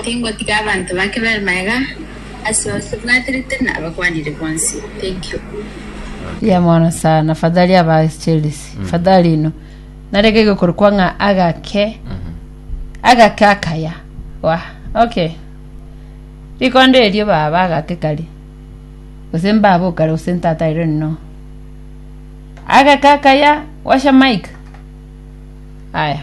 Tingotiga abanto bake bare magega ase onsi bwaterete na abakwanire bonsi. Thank you. Mbuya mono sana fadhali aba Chelsea fadhali ino nareke gokorokwa ng'a agake agake akaya wa okay rikondo erio baba agake kari gose mbaba okare gose ntata I don't know agake akaya washa mic aya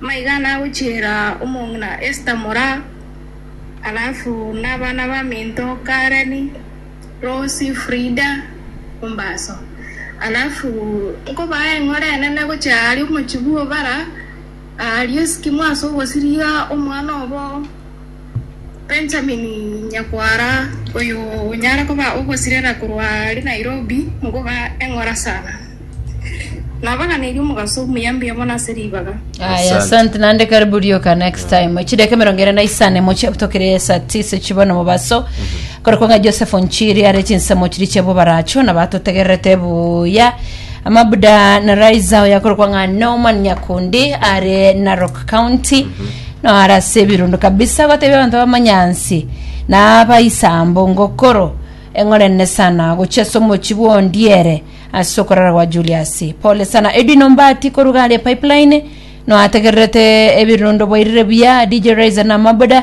Maiga nagochiera omong'ina Esta moraa, alafu nabana baminto Kareni, Rosi, Frida, ombaso. Alafu nkobaa eng'ora enene gochia aaria omochie bw'obara, aaria esikimo ase ogosiria omwana obo. Benjamini nyakwara oyo onyare koba ogosirera korwa are Nairobi ngoga eng'ora sana. Nabaganeirie omogaso omuya mbuya mono ase ribaga. Aya, Asante. asante nande karibu rioka next time chideka emerongo ere na isano moche tokere saa tisa chibono mobaso Korokwo ng'a Joseph Nchiri are chinsemo chiria chia bobaracho nabo atotegererete buya. Mabuda na Raiza oyo akorokwa ng'a Norman Nyakundi are Narok County no are ase ebirundu kabisa agotebi abanto bamanyansi na abaisambo ngokoro eng'ore nene sana gochia ase omochi bw'ondiere ase okorara gwa Julius pole sana Edwin Ombati koruga aria Pipeline no ategererete ebirundu bwairire buya DJ Raiza na Mabuda